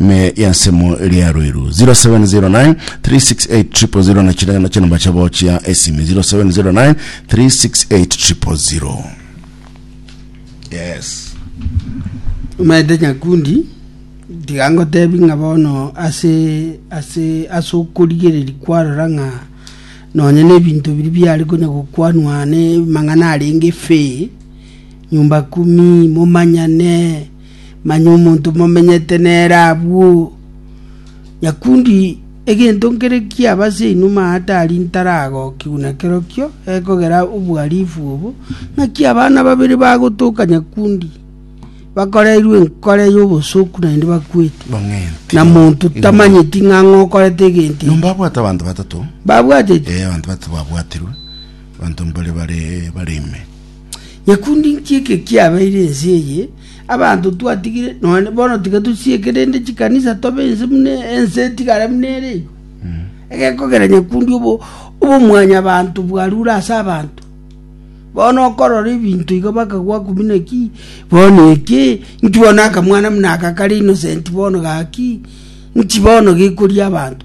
ime y'ensemo eria Ruiru 0709 368 na chire na chinamba chabo chia esimi 0709 368 yes omanyete nyakundi tiga ngotebi ng'a bono ase ase ase okorigereri kwarora ng'a nonye na ebinto biri biare konya gokwanwa ne mang'ana arenge fe nyumba kumi momanyane Manya omonto momenyete nere abwo. Nyakundi, egento nkere kiaba ase inuma aa tari ntaragokigwa na kerokio, ekogera obohalifu obo, ng'aki abana babere bagotoka nyakundi, bakoreirwe enkore y'obosoku naende bakwete, Bang'enti. na monto tamanyeti ng'a ng'a okorete egento eke. Nombabwate abanto batato. Babwateti? Eh, abanto batato babwatirwe, abanto mbare bare bare ime. Gekundi inki eke kiabeire ense eye? Abanto twatigire, nonya bono tiga tosieke rende chikanisa tobe ense buna ense etigare buna ere igo. Egekogera nyakundi obo obomwanyabanto bwarure ase abanto. Bono okorora ebinto igo bakagwa ku buna ki? Bono eke, inki bono akamwana buna aka kare innocent bono gaki? Inki bono gekoria abanto?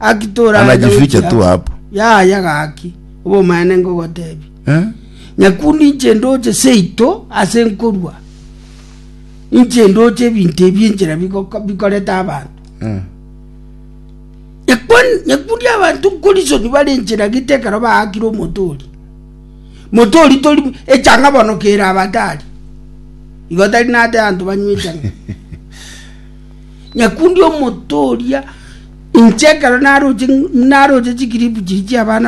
Gaki toraenda Anajificha gochia tu hapo. yaya gaki obomaene ngogotebi Eh? nyakundu inche ndoche seito ase nkorua inche ndoche ebinto ebi enchera bigoko- bikorete abanto Eh. Nyakwan- nyakundi abanto nkorisoni bare enchera gete ekero baakire omotori motori tori echanga bono kera abatari igo tari nate abanto banywa echanga Nyakundi omotooria, inche ekero naroche, naroche chikiripu chiria chi'abana